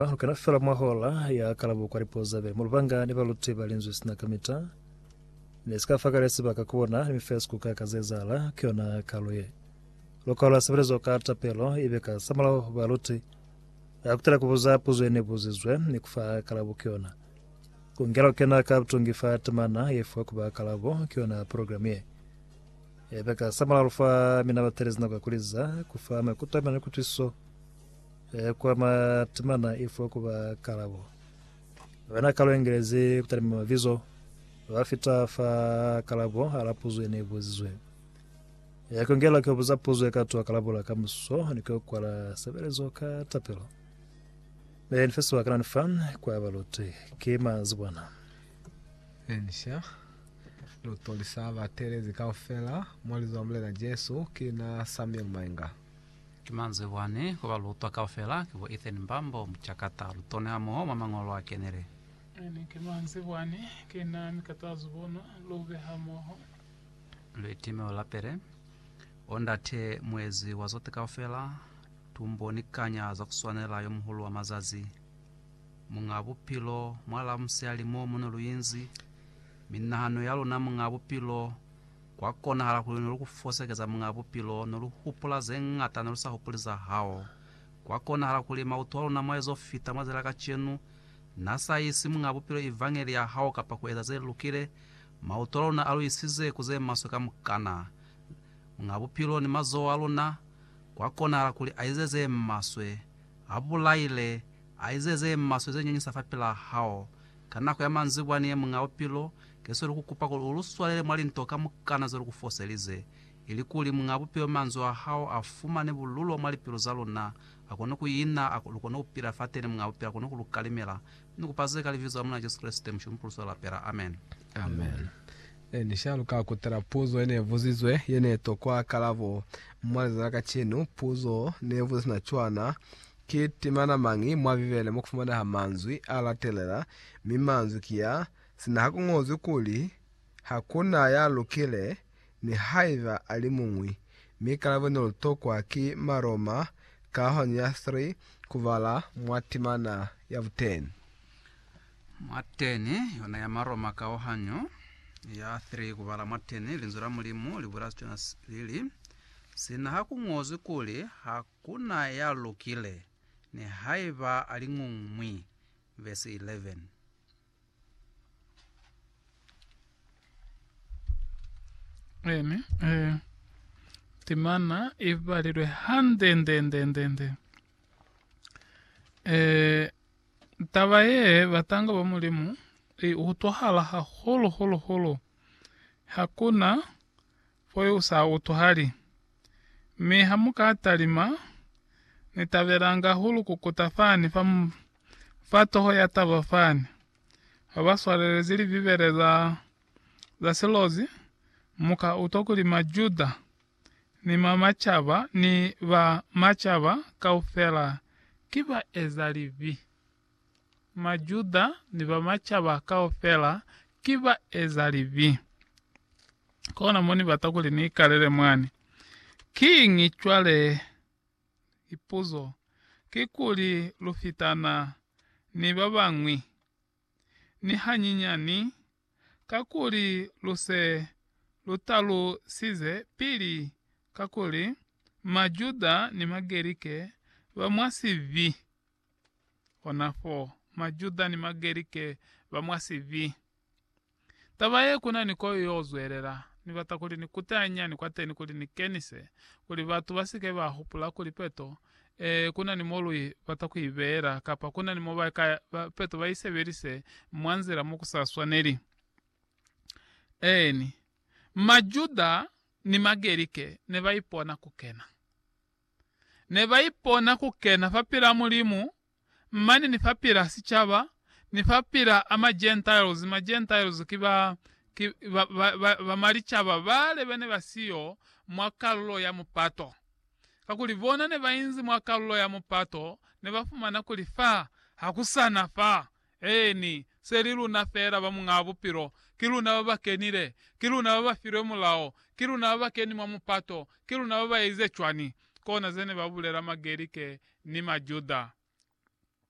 Ba lukela fela mwa hola ya kalabo kwa lipuo za beli. Mu lubanga ni baluti ba linzwi sina kamita ne si ka fa kale sibaka ku bona ni mifeso ku ka ka ze zahala ku yona kalo ye. Lukao la sebelezo ka tapelo ibe ka sa mulaho baluti ba kutela ku buza puzo ye ne buzizwe ni ku fa kalabo ku yona. Ku ngela ku kena ka butungi fa temana ye fiwa ku ba kalabo ku yona program ye ibe ka sa mulaho lu fa mina batelezi nako ya ku liza ku fa maikuto a mina ni kutwisiso Ee, kwa matemana i fo kuba kalabo. Wena ka luengelezi kutalima mabizo, lwa fita fa kalabo a la puzo ye ne ibuzizwe. Ee, ku ngela ku buza puzo ye ka twa kalabo la kamuso ni ku kwala sebelezo ka tapelo. Ee, ni fe sebaka na ni fa kwa baluti. Ki manzibwana. Encia, lu tolisa batelezi kaufela mo li zwa Mulena Jesu. Ki na Samuel Mainga. Ki manzwi bwani ku ba lutwa kaufela, ki bo Ethan Mbambo, mucakata, lutoni hamoho mwa mañolo a kenile. Mane ki manzwi bwani, ki na mi katazu bono, lu be hamoho. Lu itime u lapele. O Ndate, Muezi wa zote kaufela, tumbo ni kanya za ku swanela, Yo Muhulu wa mazazi, Muñ'a Bupilo, mwalaa musiali mo mu ne lu inzi, mi nahano ya luna, Muñ'a Bupilo, Kwa konahala kuli ne lu ku fosekeza Muñ'a Bupilo, ne lu hupula ze ñata ne lu sa hupuli za hao. Kwa konahala kuli mautu a luna mwa ezo fita mwa zila kacenu, Na sa isi Muñ'a Bupilo Evangeli ya hao kapa ku eza ze lukile, mautu a luna a lu isize ku ze maswe kamukana. Muñ'a Bupilo ni mazoho a luna, kwa konahala kuli a ize ze maswe, a bulaile, a ize ze maswe ze nyanyisa fapilaa hao. Ka nako ya manzibwa ni ye Muñ'a Bupilo, Keso lukukupa kuli uluswalele mwa linto kamukana zelukufoselize, ilikuli Muñaa Bupilo manzwi ahao afumane bululo mwa lipilu zaluna, akone kuina, lukone kupila fateni, Muñaa Bupilo akone kulukalimela. Ni kupa ze ka Libizo la Mulena Jesu Kreste, Mushomi Pulusi wa Lapela. Amen. Amen. E ni sha luka kutala puzo yene buzizwe yene tokwa kalabo. Mwa lizwezi la kacenu, puzo ne buza sina cwana, Ki temana mañi mwa Bibele mo kufumaneha manzwi a latelela, mi manzwi ki ya, Sina ha ku ñozwi kuli, Ha ku na ya lukile, mi haiba a li muñwi, mi kalabo ne lu tokwa ki Maroma ka honi ya 3 ku bala mwa timana ya buteni. Mwa teni yona ya Maroma kaohanyo ya 3 ku bala mwa teni, Linzwi la Mulimu li bula sicwana li li, Sina ha ku ñozwi kuli, Ha ku na ya lukile, ni haiba a li ñungmwi. Vesi 11. Amen. Eh, timana ibalilwe handendendendende. Eh, taba ye batanga ba mulimu e utwahala haholo holo holo hakuna Foyo u sa utwahali. Mi ha mu ka talima, Ni tabelanga hahulu ku kuta fani fa, fa toho ya taba fani, ha ba swalelezi Libibele za, za silozi, mu ka utwa kuli Majuda, ni ma macaba, ni ba macaba kaufela ki baezalibi. Majuda ni ba macaba kaufela ki baezalibi. Kona mo ni bata kuli ni ikalele mwani. Kiñi cwale? Lipuzo kikuli, lu fitana ni ba bañwi? Ni hanyinyani, kakuli lu se lu talusize pili kakuli Majuda ni Magerike ba mwa sibi. Honafo, Majuda ni Magerike ba mwa sibi. Taba ye, ku na ni koyo y'o zwelela. Ni bata kuli ni kute hanyani kwateni kuli ni kenise, kuli batu ba si ke ba hupula kuli peto e, ku na ni mo lu bata ku i beela, kapa ku na ni mo ba ka peto ba i sebelise mwa nzila mo ku sa swaneli. Eeni, Majuda ni Magerike ne ba ipona ku kena. ne ba ipona ku kena fapil'a Mulimu mane ni fapil'a sicaba ni fapil'a a ma Gentiles, ma Gentiles ki ba, ki ba, ba, ba, ba malicaba bale ba ne ba siyo mwa kalulo ya mupato. Kakuli bona ne ba inzi mwa kalulo ya mupato, ne ba fumana kuli fa ha ku sa na fa Eeni, se li luna feela ba Muñaa Bupilo, ki luna ba ba kenile, ki luna ba ba filwe Mulao, ki luna ba ba keni mwa mupato, ki luna ba ba ezize cwani? Kona ze ne ba bulela Magerike ni Majuda.